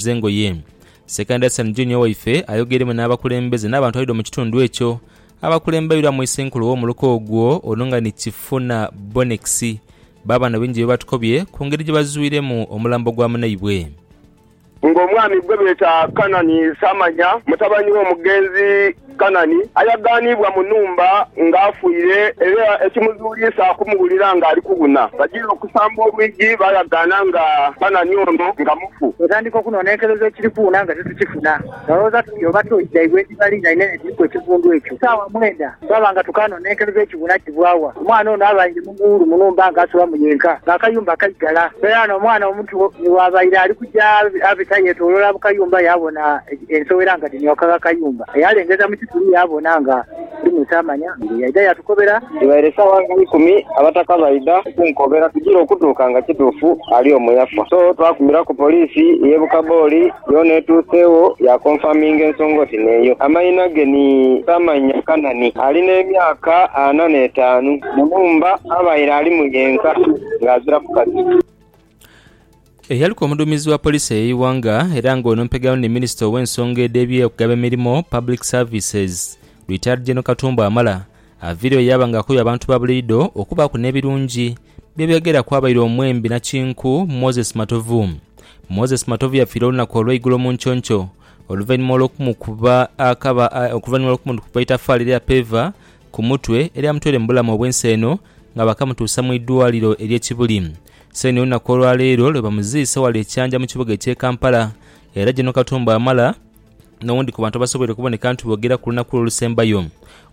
z'engoye. Sekandi Asan Junior waife ayogeiremu n'abakulembeze n'abantu abaidha mu kitundu ekyo abakulembeirwa mu Isenkulu w'omuluka ogwo ono nga ni Kifuna Bonex baaba na bingi bye batukobye ku ngeri gye bazwiremu omulambo gwa munaibwe. Ng'omwami gwe beeta Kanani Samanya, mutabani w'omugenzi. Kanani ayagaanibwa mu nhumba nga afiire, era ekimuzuuliisa kumuwulira nga ali kubuna. Bajiira okusamba olwigi baayagaana nga Kanani ono nga mufu. Twatandika okunonenkereza ekiri kuwuna nga titukifuna. Twalowooza tuti oba to idhaibwe edhibali nga inene edhiriku ekivundu ekyo. Ku saawa mwenda twaba nga tukaanonenkereza ekibuna kivwa wa. Omwana ono abaire mughuulu mu nhumba nga asulamu yenka, nga akayumba kaigala. Era n'omwana omuto ni bw'abaire ali ku. Yaabita yeetooloola mu kayumba, yaabona ensowera nga dhimyoka gh'akayumba. Yaalengeza mu kituli, yaabona nga mulimu Tamanya. Mbire yaidha yaatukobera. Dhibaire saawa nga ikumi, abataka baidha okunkobera tugire okutuuka nga kituufu ali omwo yafa. So twakumiraku poliisi y'e Bukaboli, yoona etuuseegho yaakonfaminga ensonga oti n'eyo. Amaina ge ni Tamanya Kanani, ali n'emyaka ana n'etaanu. Mu nhumba abaire alimu yenka ng'azira mukazi. Eyaliku omuduumizi wa poliisi ey'eighanga era nga ono mpegano ni minisita ow'ensonga edh'eby'okugaba emirimo, Public Services, Retired General Katumba Wamala aviireyo yaaba nga akoye abantu ba buliidho okubaaku n'ebirungi bye beegera kwabaire omwembi nakinku Moses Matovu. Moses Matovu yafiire olunaku olweigulo mu nconco oluvainhuma olw'okumukuba akaba oluvainhuma olw'okumukuba eitafaali erya peeva ku mutwe eryamutwere mu bulamu obw'ensi eno nga baakamutuusa mu idwaliro ery'e Kibuli. Seeni olunaku olwa leero lwe bamuziise ghale e Kyanja mu kibuga eky'e Kampala era General Katumba Wamala n'owundi ku bantu abasoboire okuboneka nti boogera ku lunaku lwe olusembayo.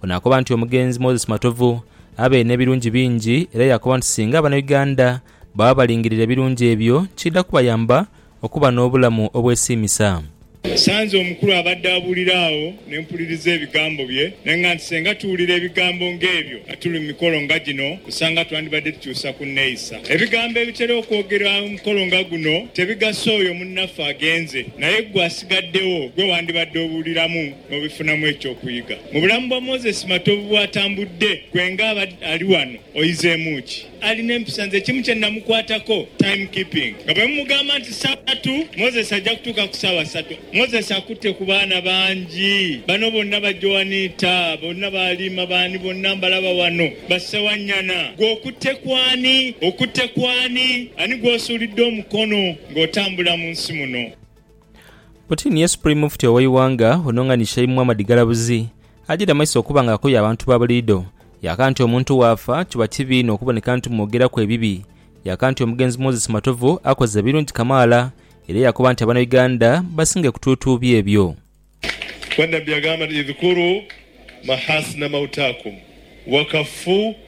Ono akoba nti omugenzi Moses Matovu abaire n'ebirungi bingi era yaakoba nti singa Bannayuganda baba balingirira ebirungi ebyo kidha kubayamba okuba n'obulamu obwesiimisa. Nsanze omukulu abadde abuulira agho ne mpuliriza ebigambo bye. Naye nga nti singa tuwulira ebigambo ng'ebyo nga tuli mu mikolo nga gino, osanga twandibadde tukyusa ku nneeyisa. Ebigambo ebitera okwogerwa mu mukolo nga guno tebigasa oyo munnaffe agenze, naye ggwe asigaddewo gwe wandibadde obuuliramu n'obifunamu eky'okuyiga. Mu bulamu bwa Moses Matovu bw'atambudde, ggwe nga ali wano oyizeemu ki? Ali n'empisa nze kimu kye namukwatako, time keeping. Nga bwe mumugamba nti saawa tu, Moses aja kutuuka ku saawa satu. Moses akutte ku baana bangi. Bano bonna ba Joanita, bonna ba Alima, baani bonna mbalaba wano. Ba Ssewanyana. Gwe okutte ku ani? Okutte ku ani? Ani gw'osuulidde omukono ng'otambula mu nsi muno? Putin ye Supreme Mufti ow'eighanga ono nga ni Sheim Muhammad Ggalabuzi ajaire amaiso okuba nga akoya abantu ba buliidho yaaka nti omuntu waafa kiba kibi inho okuboneka nti mwogeraku ebibi yaaka nti omugenzi Moses Matovu akoze ebirungi kamaala era yakoba nti Abanauganda basinge kutuutuubya ebyo Wannabi agamba nti, Idhkuru mahaasina mautaakum wakaffuu.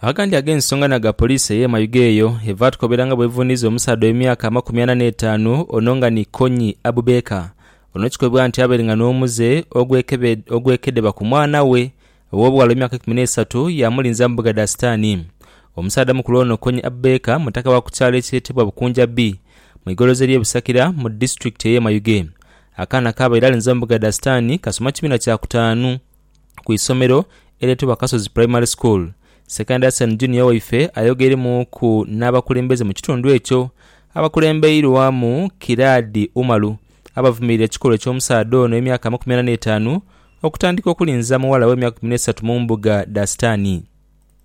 Agandi ag'ensonga na ga poliisi eye Mayuge eyo evatukobera nga bwevuniiza omusaadha ow'emyaka amakumi ana n'etaanu ono nga ni Konyi Abubaker ono kikobibwa nti abaire nga n'omuze ogwekedeba ku mwana we ow'obughala ow'emyaka eikumi n'eisatu yamulinza mu bbuga dha sitaani. Omusaadha mukulu ono Konyi Abubaker mutaka wa ku kyalo ekyetebwa Bukunja B mu igolozi erye Busakira mu disitulikiti eye Mayuge. Akaana k'abaire alinza mu bbuga dha sitaani kasoma kibiina kya kutaanu. ku isomero eryetebwa Kasozi Primary School. Sekandi Hassan Junior waife ayogeremuuku n'abakulembeze mu kitundu ekyo abakulembeirwamu Kiraadi Umalu abavumirira ekikolwa eky'omusaadha ono ow'emyaka amakumi ana n'etaanu okutandika okulinza muwala we emyaka ikumi n'esatu mu mbuga dha sitaani.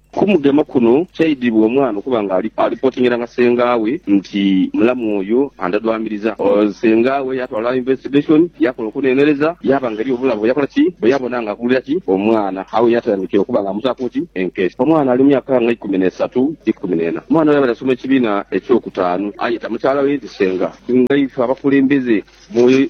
Ku mugema kuno, kyaidhibwa omwana okuba nga alipotingira nga sengaawe nti mulamu oyo andadwamiriza. Sengaawe yatwala investigation, yakola okuneenereza, yaaba nga eriyo obulabe bwe yakola ki, bwe yabona nga akulira ki omwana. Agho ye yatandikira okuba nga amutaaku ki enkesi. Omwana ali mu myaka nga ikumi n'esatu, ikumi n'ena. Omwana ono yabaire asoma ekibiina eky'okutaanu. Ayeta mukyala we nti senga. Ngaife abakulembeze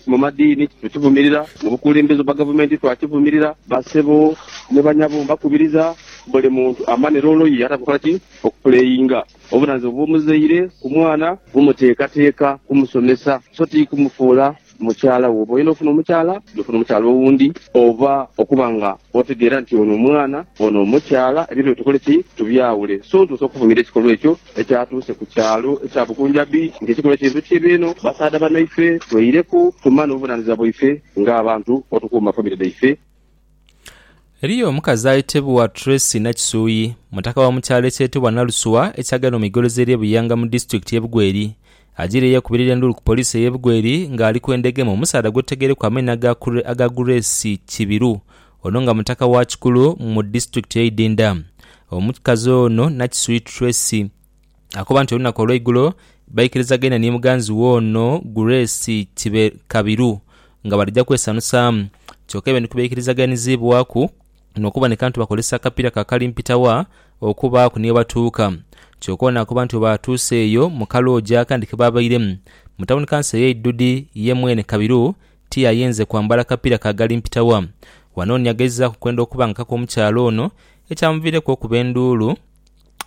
Mu madiini tukivumirira, mu bukulembeze bwa gavumenti twakivumirira. Basebo ni banyabo mbakubiriza buli muntu amanhire oluyi ye ate akola ki? Okupuleyinga obunanizibwa bw'omuzaire ku mwana mu muteekateeka kumusomesa so ti kumufuula mukyala we. Bwoba oyenda ofuna omukyala, gwe funa omukyala owundi oba okuba nga otegeera nti ono mwana ono mukyala. Ebintu bino tukole ki? Tubyawule. So ntuuse okuvumirira ekikolwa ekyo Ekyatuuse ku kyalo ekya Bukunja Beach nti kikole kintu kibi inho basaadha banaife tweireku tumane obuvunanizibwa bwaife nga abantu otukuuma famire dhaife. Eriyo omukazi ayetebwa Tracy Nakisuyi, mutaka wa mu kyalo ekyetebwa Naluswa ekyagenda mu igolozi erye Buyanga mu disitulikiti ye Bugweri, ajiireyo okubirira endulu ku poliisi eye Bugweri nga ali kwendha egema omusaadha gwetutagereku amaina aga Grace Kibiru Ono nga mutaka wa Kikulu mu disitulikiti ye Idinda. Omukikazi ono Nakiswiit Tracy akoba nti olunaku olweigulo baikirizageine ni muganzi we ono Grace Kibe Kabiru nga balija kwesanusaamu kyoka ebintu kubaikirizaganizibwaku nokuboneka nti bakozesa akapira ka kalimpitawa okubaaku ni webatuuka kyoka ono akoba nti webatuuse eyo mu kaloogi akandi kebabairemu mu tawuni kanso eye Idudi ye mwene Kabiru tiyayenze kwambala kapira ka gali mpitawa. Wanoni yageizaaku kwenda okuba nga kaka omukyala ono, ekyamuviireku okuba enduulu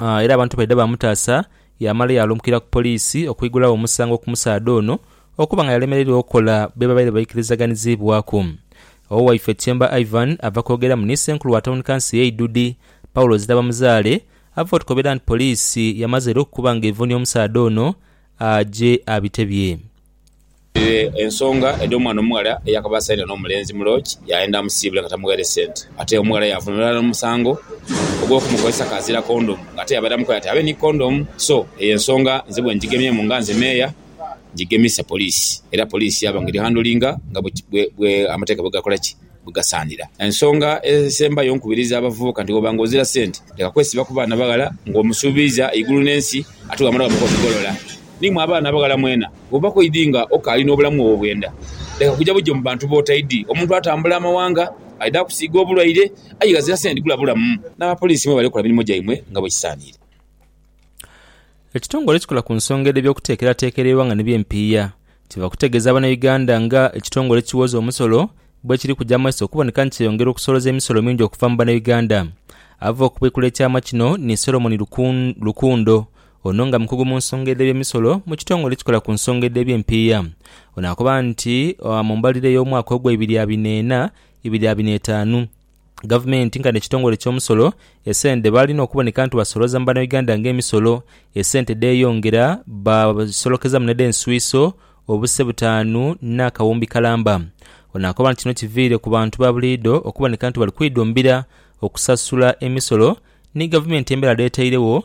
era abantu baidha bamutaasa yamala yaalumukira ku poliisi okwigulawo omusango ku musaadha ono okuba nga yalemereirwa okukola bye babaire baikirizaganizibwaku. Owaife Tyemba Ivan ava kwogeramu ni Ssenkulu wa Tawuni Kanso ye Idudi, Paulo Zirabamuzaale ava otukobera nti poliisi yamaze era okukuba nga evunia omusaadha ono aje abitebye. Ere ensonga edh'omwana omughala eyakaba asaidha n'omulenzi mu loogi yaayenda amusiibule nga tamughaire sente. Ate omughala yaavunula ghalala omusango ogw'okumukozesa k'azira kondomu ng'ate yabaire amukoye ati abe ni kondomu. So, eyo ensonga nze bwe ngigemyemu nga nze meeya, ngigemisa poliisi era poliisi yaaba nga eri handolinga nga bwe amateeka bwe gakola ki? Bwe gasaanira. Ensonga esembayo nkubiriza abavubuka nti bw'oba nga ozira sente, leka kwesiba ku baana baghala ng'omusuubiiza eigulu n'ensi ate bw'amala baamukoba bigolola. Ni mwe abaana abaghala mwena. Bw'oba kw'oidhi nga okaali n'obulamu obwo bwenda, leka kuja buja mu bantu b'otaidhi. Omuntu atambula amawanga, aidha kusiiga obulwaire, aye ghazira sente dhigula bulamu. N'abapoliisi mwe bale kola mirimo gyaimwe nga bwe kisaaniire. Ekitongole ekikola ku nsonga edh'ebyokuteekerateekera eighanga ni by'empiiya kiva kutegeeza Bannayuganda nga ekitongole ekiwooza omusolo bwekiri kuja mu maiso okuboneka nti kyeyongera okusoloza emisolo mingi okuva mu Bannayuganda. Ava okubikula ekyama kino ni Solomon Rukundo Ono nga mukugu mu nsonga edh'eby'emisolo mu kitongole ekikola ku nsonga edh'eby'empiiya. Ono akoba nti mu mbalirira ey'omwaka ogwa ibiri abina ena, ibiri abina etaanu, Gavumenti nkani ekitongole eky'omusolo esente dhe baalina okuboneka nti basolooza mu Banauganda ng'emisolo, esente dheeyongera baasolokezamu n'edh'enswiiso obuse butaanu n'akawumbi kalamba. Ono akoba nti kino kiviire ku bantu ba buliidho okuboneka nti bali kwidhumbira okusasula emisolo ni Gavumenti embera dh'etairegho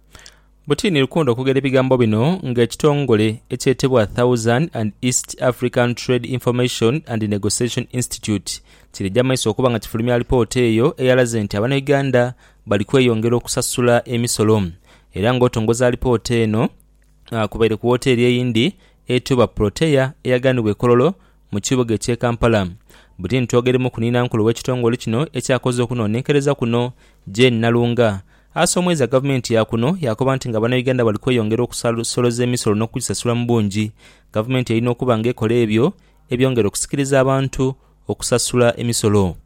Butini Rukundo okwogera ebigambo bino nga ekitongole ekyetebwa Thousand and East African Trade Information and Negotiation Institute kiridha maiso okuba nga kifulumya alipoota eyo eyalaze nti abanauganda bali kweyongera okusasula emisolo era nga otongoza alipoota eno kubaire ku woteeri eyindi etebwa Protea eyaganibwa e Kololo Mu kibuga eky'e Kampala, Britain Twogere muku ni nankulu w'ekitongole kino ekyakoze okunoonenkereza kuno, Jane Nalunga, asa omwezi a gavumenti ya kuno yaakoba nti nga Bannayuganda bali kweyongera okusasoloza emisolo n'okugisasula mu bungi, gavumenti erina okuba nga ekola ebyo ebyongera okusikiriza abantu okusasula emisolo.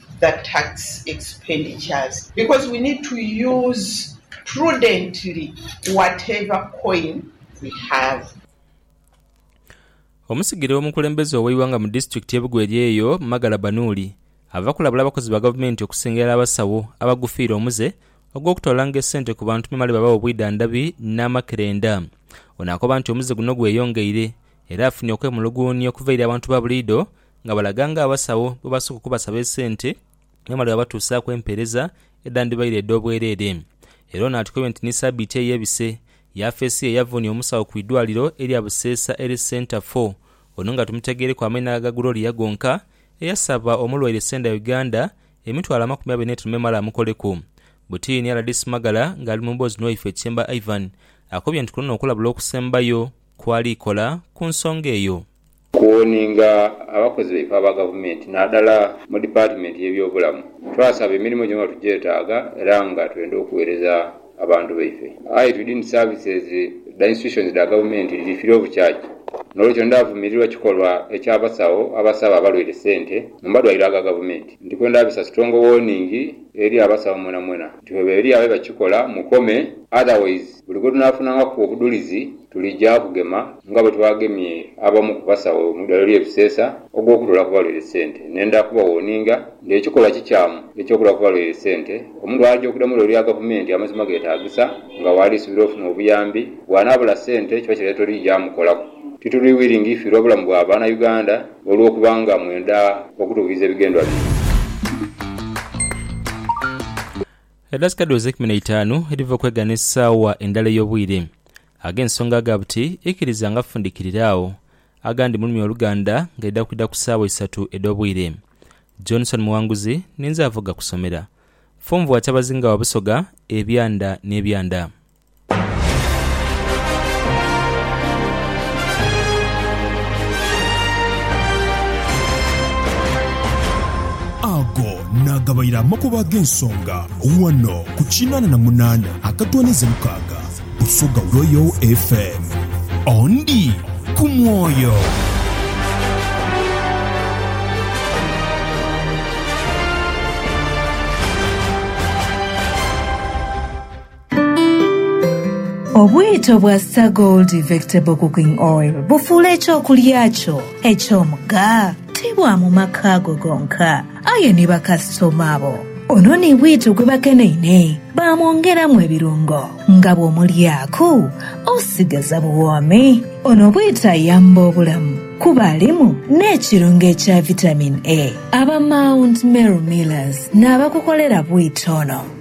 the tax expenditures because we need to use prudently whatever coin we have. Omusigire w'omukulembeze ow'eighanga mu disitulikiti y'e Bugweri eyo, Magala Banuuli, ava kulabula abakozi ba gavumenti okusengerera abasawo abagufiire omuze ogw'okutwalanga esente ku bantu memale babawe obwidhandhabi n'amakerenda. Ono akoba nti omuze guno gweyongeire era afunye okwemuluguunia okuva eri abantu ba buliidho nga balaga ng'abasawo bwe basooka okubasaba esente bamale babatuusaaku empeereza edhandibaire edh'obwereere. Era ono atukoibwa nti ni sabiiti eyo ebise, yafeesi ye yavunia omusawo ku idwaliro erya Buseesa Health Centre Four ono nga tumutegeereku amaina gha Gloria gonka eyasaba omulwaire Senda Uganda emitwalo amakumi abiri n'etaanu memale amukoleku butiini. Rdc Magala nga ali mu mboozi n'owaife Kyemba Ivan akobye nti kuno n'okulabula okusembayo kw'alikola ku nsonga eyo. Kuwoninga abakozi baife aba Gavumenti nadala mu Dipatimenti y'ebyobulamu. Twasaba emirimo gyona nga tugyetaaga era nga twenda okuwereza abantu baife. Aye twidini services dha institutions dha Gavumenti dhifire obukyakya n'olwekyo ndaavumirirwa kikolwa eky'abasawo abasaba abalwaire sente mu madwaliro aga Gavumenti. Ndikwenda this a strong warning eri abasawo mwenamwena. nti bweba eri agho ebakikola mukome otherwise buli bwetunafunangaku obudhulizi tulija kugema nga bwetwagemye abamu ku basawo mu idwaliro lye Buseesa ogwokutoola ku balwaire sente nenda kubawoninga nti ekikolwa kikyamu ekyokutola ku balwaire sente omuntu aja okuda mu idwaliro lya gavumenti amazima getagisa nga waali subira ofuna obuyambi bwanabula sente kiba kireta oti ija mukolaku tituli willing fi lwa bulamu bwa bana Uganda. olw'okuba nga mwenda okutuukiriza ebigendwa byaimwe. Edakika dhoze ikumi na itaanu edhiva okwegana esaawa endala ey'obwire. Ag'ensonga aga buti ikiriza nga fundikirira agho, agandi mulumya oluganda nga idha kwidha ku saawa isatu edh'obwire. Johnson Muwanguzi ninze avoga kusomera. Funvu wa Kyabazinga wa Busoga, Ebyanda n'Ebyanda. Ago naagabaire amakubo ag'ensonga ghano ku kinaana na munaana akatwaniza mukaaga Busoga Royal FM. Ondi ku mwoyo. Obwito bwa Star Gold Vectable Cooking Oil bufuula eky'okulya kyo eky'omugha ti bwa mu maka go gonka, aye ni bakasitoma bo. Ono ni bwito gwe bakeneine baamwongeramu ebirungo nga bw'omulyaku osigaza buwoomi. Ono bwito ayamba obulamu kuba alimu n'ekirungo ekya Vitamin A. Aba Mount Meru Millers n'abakukolera bwito ono.